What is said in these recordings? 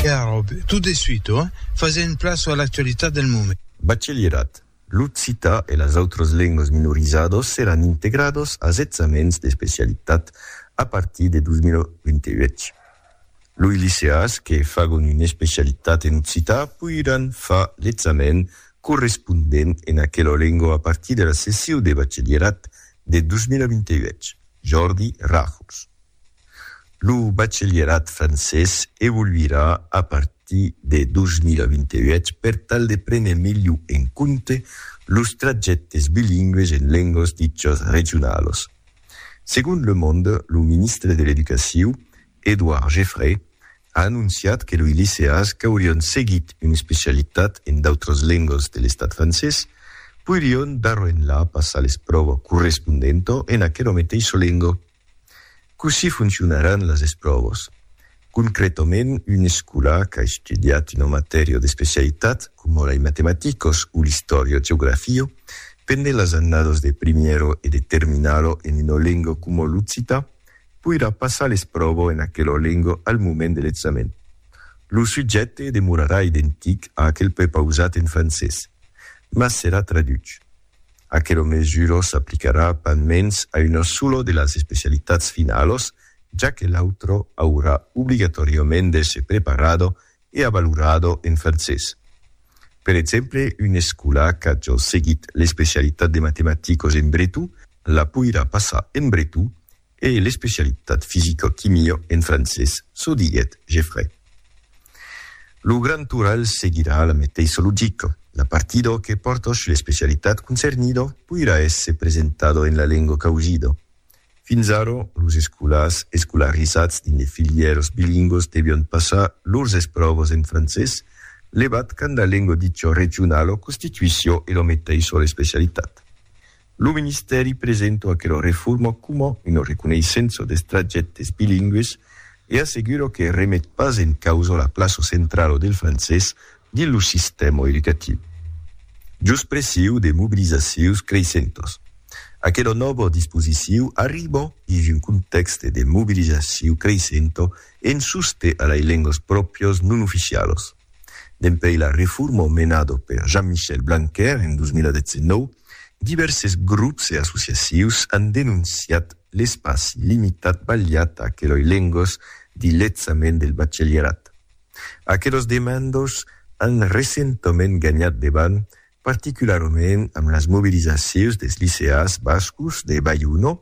Caròb, tot de suite, ò? Fasèm plaça a l'actualitat del moment. Bachelièrat, l'occitan e las autras lengas minorizadas seràn integradas as examèns d'especialitat a partir de 2028. Loi liceàs que fagon una especialitat en occitan poiràn far l'examèn correspondent en aquela lenga a partir de la sessiu de bachelièrat de 2028, Jordi Ràfols. Lo bachelierat francés evoluirà a partir de 2028 per tal de prene melhor en compte los trajèctes bilingües en lengas dichas regionalas. Segon Le Monde, lo ministre de l'Educaciu, Edouard Geffray, a anonciat que loi liceas qu'aurián seguit una especialitat en d'autras lengas de l'estat francés poirián d'arrenhla passar l'espròva correspondenta en aquela meteissa lenga. Cossí foncionaràn las espròvas? Concrètament, un escola qu'a estudiat una matèria d'especialitat, coma la i matematicas o l'istòria geografia, pendent las annadas de primièra e de terminala en una lenga coma l'occità, poirà passar l'espròva en aquela lenga al moment de l'examen. Lo subjècte demorarà identic a aquel prepausat en francés, mas serà traduch. Aquelo mesuro s'aplicarà pas mens a una sola de las especialitats finalos, ja que l'autro aurà obligatòriament d'èsser preparado e avalorado en francés. Per exemple, un escolà qu'a jos seguit l'especialitat de matematicos en breton la poirà passar en breton E l'especialitat fisicoquimio en francés, çò diguèt Geffray. Lo grand oral seguirà la meteissa logica, la partidor que portosch l'especialitat concernido poirà èsser presentado en la lenga causida. Fins ara, los escolars escolarizats dins de filièras bilingüas devián passar lors espròvas en francés, levat quand la lenga dicha regionala constituissiá ela meteissa l'especialitat. Lo ministèri presento aquela reforma coma una reconeissença dels trajèctes bilingües e assegura que remet pas en causa la plaça centrala del francés dins lo sistèma educatiu. Jos pressiu de mobilizacions creissentas, aquela nòva disposiciu arriba dins un contèxte de mobilizaciu creissenta en soste a lei lengas pròprias non oficialas. Dempuèi la reforma menada per Jean-Michel Blanquer en 2019, divèrses grops e associacius an denonciat l'espaci limitat balhat a aqueloi lengos dins l'examen del bachelierat. Aquelos demandos an recentament ganhat debant, particularament amb las mobilizacius des liceas bascos de Baiuno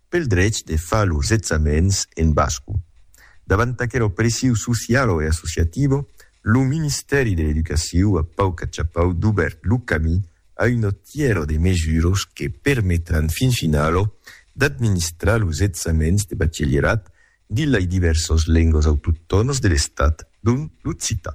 Pel drech de far los examens en basco. Davant aquela opressiu socialo e associativo, lo Ministèri de l'Educaciu a pauc achapau dubèrt lo camí a una tièra de mesuras que permetràn fin finalo d'administrar los examens de bachelierat dins lai divèrsas lengas autoctònas de l'Estat, dont l'occitan.